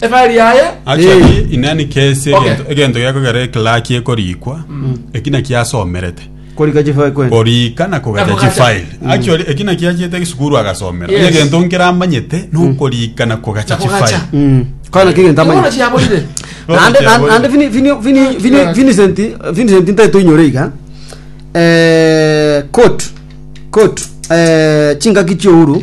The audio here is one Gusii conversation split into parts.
Ebari yaye Actually, Eh. in any case, Okay. egento- egento gekogera eklaki ekorikwa eki naki asomerete korika chifai kwene korika na kogata Na kogata. chifile actually eki naki achiete gisukuru agasomera Yes. egento nkeramanyete nokorika na kogacha Na kogacha. chifile Mm. kwana kigento Ibono amanya chiaborire Nande- Ocha, nande- ocha. nande Vini- Vini- Vini- Vini- Ocha. Vincent Vincent ntae toinyore iga Eh, court court eh, chingaki chiouru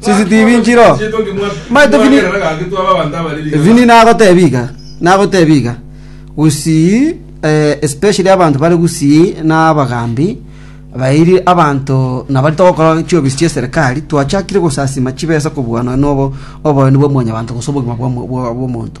CCTV nchiro. Maete Vini. Vini nagotebia iga. Nagotebia iga. Gusii eh, especially abantu bare gusii na abagambi bairi abanto nabari togokora chiobisi chia serikali twachakire gosasima chibesa kobua nonya nobo oboyoni bwa mwanyabanto gose obogima bwa mo- bwa- bwa omonto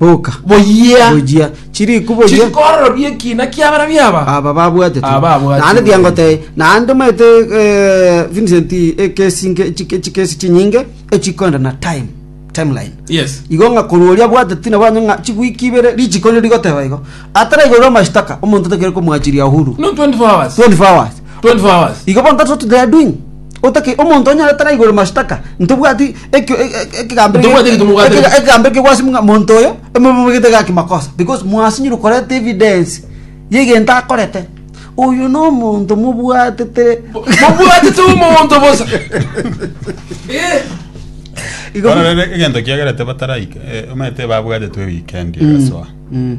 Boka. Boyia. Boyia. Chiriku boyia. Chiri kororobia ekina kia bara biaba. Aba babwate tu. Aba babwate. Naende tu. tiango te. Naende maete eh, Vincent ekesi nge chike chikesi chinyinge echikwenda na time timeline. Yes. Igo nga koruoria bwate tina bwanye nga chigwiki ibere lichiko liri goteba igo. Atara igo mashitaka omonto tekere komwachiria uhuru. No 24 hours. 24 hours. 24 hours. Igo bonto what they are doing. Otake omonto onyorete naigoro mashtaka, ntobwati ekio- e- e- ekegambero gie- Ntobwati egento mobwate. ekega- ekegambero kiaigwa ase mong'a- monto oyo, emomobegete gaki makosa, because mwasinyire koreta evidence yegento akorete. Oyo nomonto mobwatete Mobwatete omonto bosa. Eh. Igo- Bono rero egento kiagerete bataraika eh, omanyete babwatetwe weekend egasoa Mm.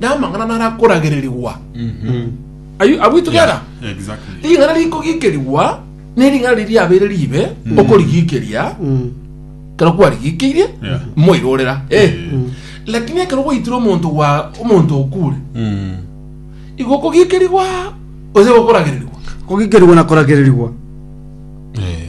namang'ana narakoragererigwa Are you- are we together Exactly. ring'ana rikogikerigwa ne ring'ana riri riabeire ribe okorigikeria kero kwarigikeirie Yeah. moirorera Eh. lakini ekero gwaitire omonto gwa omonto okure Mm. igo kogikerigwa ose gokoragererigwa kogikerigwa na koragererigwa Eh.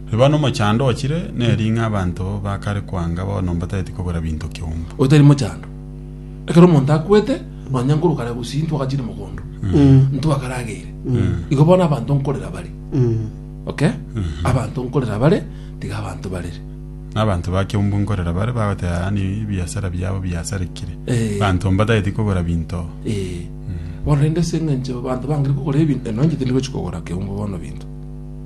Riba nomochando ochire neri ng'a abanto ba kare koanga bono mbatagete kogora binto kiombo. Otari mochando. Ekero omonto akwete, nonya nkorwa kare gusii ntwagachire mogondo, ntwakarageire. Igo bono abanto nkorera bare. Okay? Abanto nkorera bare, tiga abanto barere. Na abanto ba kiombo nkorera bare bagoteba yaani ebiasara biabo biasarekire. Eh. Abanto mbatagete kogora binto. Eh. Bono rende ase eng'encho abanto bangire kogora ebinto, nonya intwe tindi gochia kogora kiombo bono binto.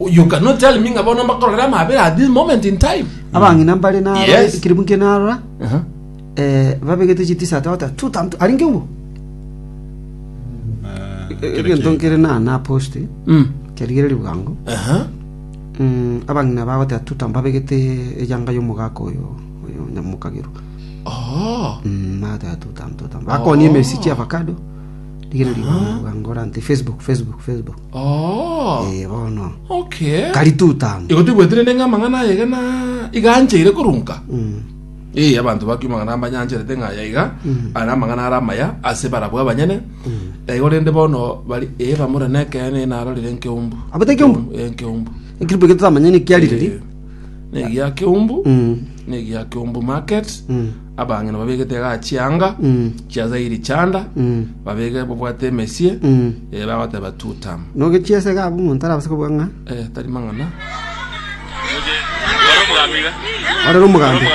You cannot tell me ng'a bono mbakorora amabera at this moment in time. abang'ina mbare na Yes. ekiribu nke narora Uh-huh. eh, babegete chitisa tata tutantu ari nke ngwo egento nkere na na post Mm. kerigere ribugango Uh-huh. Mm, abang'ina bagotera tuta mbabegete eyanga y'omogaka oyo oyo nyamokagero Oh. Mm, bagotera tuta tuta bakonia emesi chia avocado rigere ribugango rante facebook facebook facebook Oh, Ee, bono. okay. Kari tutamu. Igo tibwetirene ng'a amang'ana aya iga na iga ancheire korunka. Mm. Ee, abanto ba Kiuma ng'a mbanyancharete ng'a aya iga are amang'ana are amaya ase barabwo abanyene. Na igo rende bono bari ee bamura nekeene ee narorire nkeumbu. Abete ekeumbu? Ee, nkeumbu. Ekiripo eke totamanyeti nkiarire ri. Ee, Negi ya keumbu. Mm. Negi ya keumbu market. Mm. Abang'ina babegete igaa chianga chia Zairi chanda, babege babwate emesie, ee, bagoteba Tutam. Nogechi ase iga abwo omonto arabase kobuga ng'a Eh, tari mang'ana. ore nomogambi.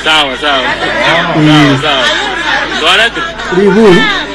Sawa sawa. Sawa sawa. Twalete. Ribu